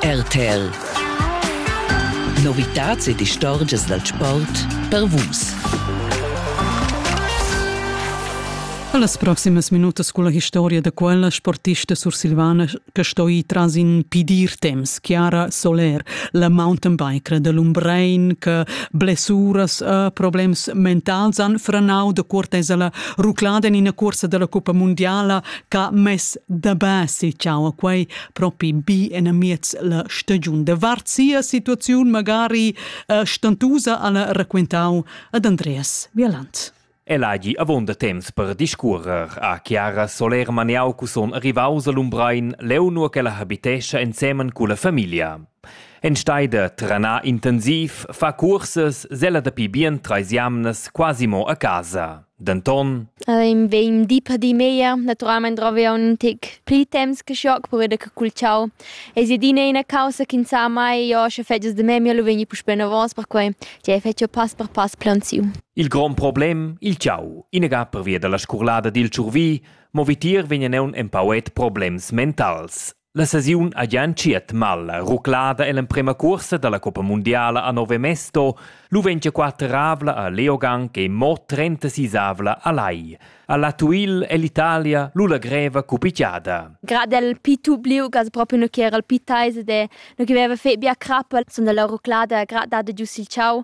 RTL Novitats ed istorgias dal sport per Vus. Las proximas minutas culla historia da quella sportista sursilvana che sto ir tras in pidir temps, Chiara Soler, la mountainbiker da Lumbrein che blessuras e problems mentals han frenau da cortesa la ruclada en ina cursa della Coppa Mondiala Ca mess da basi ciao a quei propi bi enamiez la stagiun de vart sia situaziun magari uh, stantusa alla raquentau ad Andreas Vieland. El hagi avonda temps per discuorer a Chiara Soler Maniau cusom arrivaus a Lumbrein leu nur che la habitescha ensemen cu la familia. En steide trana intensiv fa cursas sella dapi bien treis jamnas quasi mo a casa. Denton Ehm, vegn di per di meglier. Naturalmein drovi aunc in tic pli temps che schoc per veder che cul ciao. Ei si adina ina causa che sa mai, io sche fetgias de memia lu vegni puspei novos, perquei che ei fetgia pass per pass plaunsiu. Il grond problem, il ciao, inaga pervia dalla scurlada dil tschurvi, mo vitier vegnan aunc empauet problems mentals. La sesiun ha gia entschiet mal. Ruclada ell'emprema cuorsa dalla coppa mundiala a Nove Mesto, lu ventiquattravla a Leogang e mo trentasisavla a Lai. Alla Tuil è l'Italia lu la greva cupicchiada. Grad el pitu bliu gas proprio no che era il pitaise de no che veva fe bia crappa, son dalla ruclada grad dada giu sil ciau.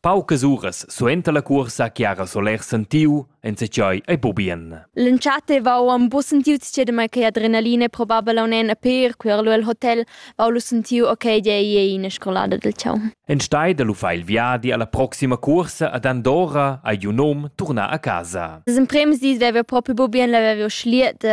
Paucas uras suenter la cuorsa che ha Soler sentiu enzatgei ei bubien. L'entschatta vau am bu sentiu tschedemai che adrenalina probabel aunen a per quer lu el hotel vau lu sentiu ok dei ei ina scolada del ciao. En stai da lu fa il viadi alla proxima cuorsa ad Andorra ei un nom turnar a casa. Das im Premis dis wäre proprio bubien, la wäre schliet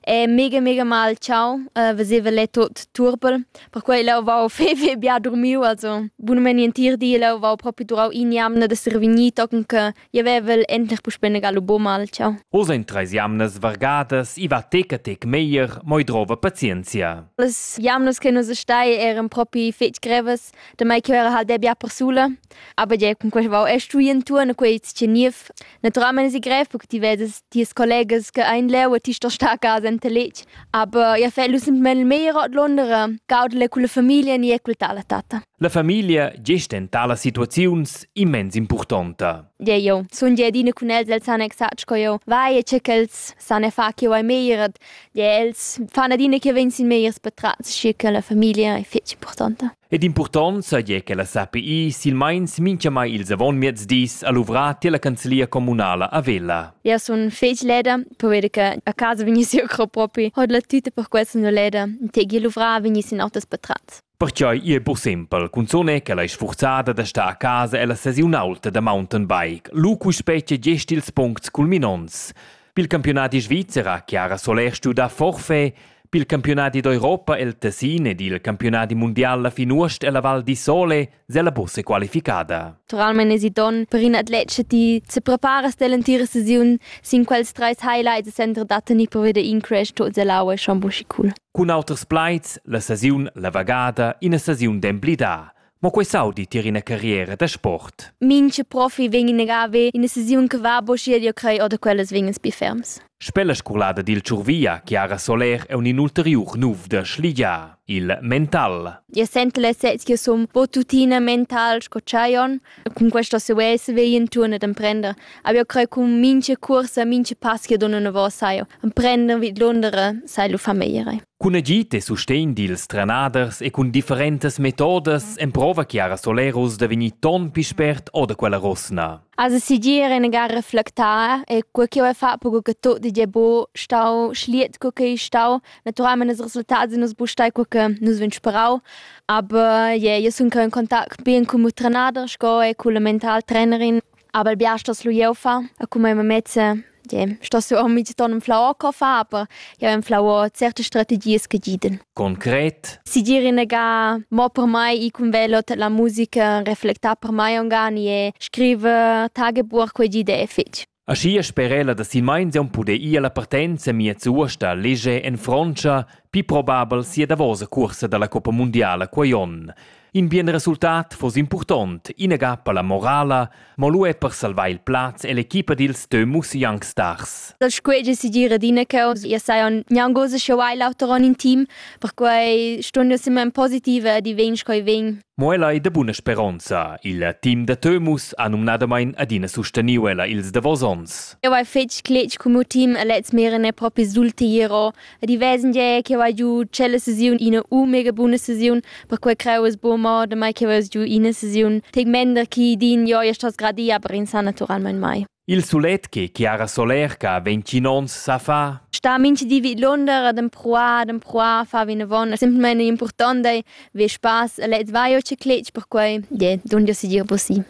E mega, mega mal ciao, uh, veseva lei tot turbel. Perquei leu vau fei, fei bia durmiu, also bunamain entir di leu vau propi durau in jamna d'esser vegnì, tochen che jeu vevel endlich puspei negar lu buca mal ciao. Oz ein treis jamnas vargadas, i va tec a tec meglier, moi drova pazienzia. Las jamnas che nus stai eran propi fetg grevas, da mai che era halt bia persula. Aber ja, cun quest vau es stui intuorn a quei tscheniv. Naturalmein es i grev perche ti vedes ties collegas che ein leu e ti stos star a casa enta letg. Aber ja fai lu semplamain meglier ordlondere, gaudele cun la famiglia ni e cul ta la tatta. La famiglia gest en talas situaziuns immens impurtonta. Ja, jo, sun ja adina cun els, els san exact sco eu. Vai e che ch'els san e fa che vai meglier. Ja, els fan adina che vegn sin megliers patrats, schi che la famiglia è fetg importanta. Ed impurtont saja che la SAPI silmeins mintgamai ils avonmiezdis ha luvrà tier la canzlia communala a Vella. Eu sun fec leda, pover che a casa vegnissi eu cro propi. Hod la tüta per questa no leda, tegi luvrà vegnissi in autas patrat. Perciò è pur simpel, cunzone che la sforzada da sta a casa e la sesiun alta da mountainbike. Lu cu specie gest ils puncts culminonts. Pil campiunadi svizzer Chiara Solèr studa forfait, pil campiunadi d'Europa el Tessin ed il campiunadi mundial la fin uost ella Val di Sole sella bussa qualificada. Naturalmein esi donn per in atlet che ti se preparas dell'entira sesiun sin quels treis highlights e sentra da tenir per veder in crash tut ell'aua e schon buschi cool. Cun auters plaids, la sesiun la vagada, ina sesiun d'emblidar. Mo quei saudi tier ina carriera da sport. Minche profi vegn in agave in decisiun che va bo schier io crei oder quellas vegnas bi ferms. Spella scolada dil Ciurvia, Chiara Soler è un inulteriur nuf da schligia, il mental. Io sento la sez che som bo tuttina mental sco Chaion. Con questo se vese veien turne d'emprender. Aber io crei con minche corsa, minche pass che donne ne vo saio. Emprender vid Londra sai lu famiglie. Cun agid e sustegn dils trenaders e cun differentas metodas emprova Chiara Solerus da vegnir ton pli spert oder quella rosna. Also sigur enagar reflectar e quel che ho fatto co che tot di bo stau schliet co che stau naturalmente els resultati nus bu stai co che nus vin sperau aber yeah, io sun in contact bien con il trenader sco e con la mental trainerin Aber biastas lu jeu fa, a come me mezze, je, sto su mi ti ton flau co fa, aber ja im flau certe strategies che giden. Konkret? Si dire nega mo per mai i cum velo la musica reflecta per mai ongani e scrive tagebuch quei gide fetg. Aschi sperela da si meins on pude ir la partenza mia zuosta lege en Frontscha, pi probabel sia davosa cursa dalla Coppa Mondiala quei on. In bien resultat foss impurtont, inaga per la morala, mo lu er per salvar il plaz e l'equipa dils Dömus Young Stars. Dal squege si gira d'ina causa, io sai on gnangosa che vai l'auter on in team, perquai stun io simma in positiva di vegn coi vegn. Mo ella è de buna speronza. Il team da Tömus ha numnadamain adina susteniu ella ils davos ons. Io vai fetg cletg cum team e lez meren è propi sulti iero. Rivesan gie che vai giu tschella sesiun ina u mega buna sesiun, perquei creu es buca mo damai che veus giu ina sesiun tegmender chi din jo ja stas gradia, aber in sa naturalmein mai. Il sulet che Chiara Solerca ventgin onns sa fa sta minchi di vid Londra ad empruar, ad empruar, fa vinavon. È semplicemente importante, vi spaß, lez vai o ce cletg, perquei, yeah, donn jo si dir possibile.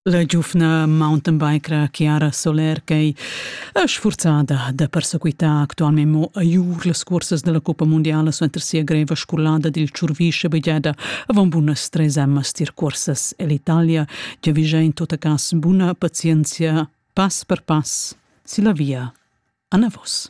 La giuvna mountainbikera Chiara Soler ch'ei sfurzada da persequitar actualmein mo a Jur las cursas dalla cuppa mundiala suenter sia greva scolada dil tschurvi schabegiada avon bunas treis emmas tier cursas ell'Italia giavischa in tot cass buna pazienzia pass per pass silla via anavos.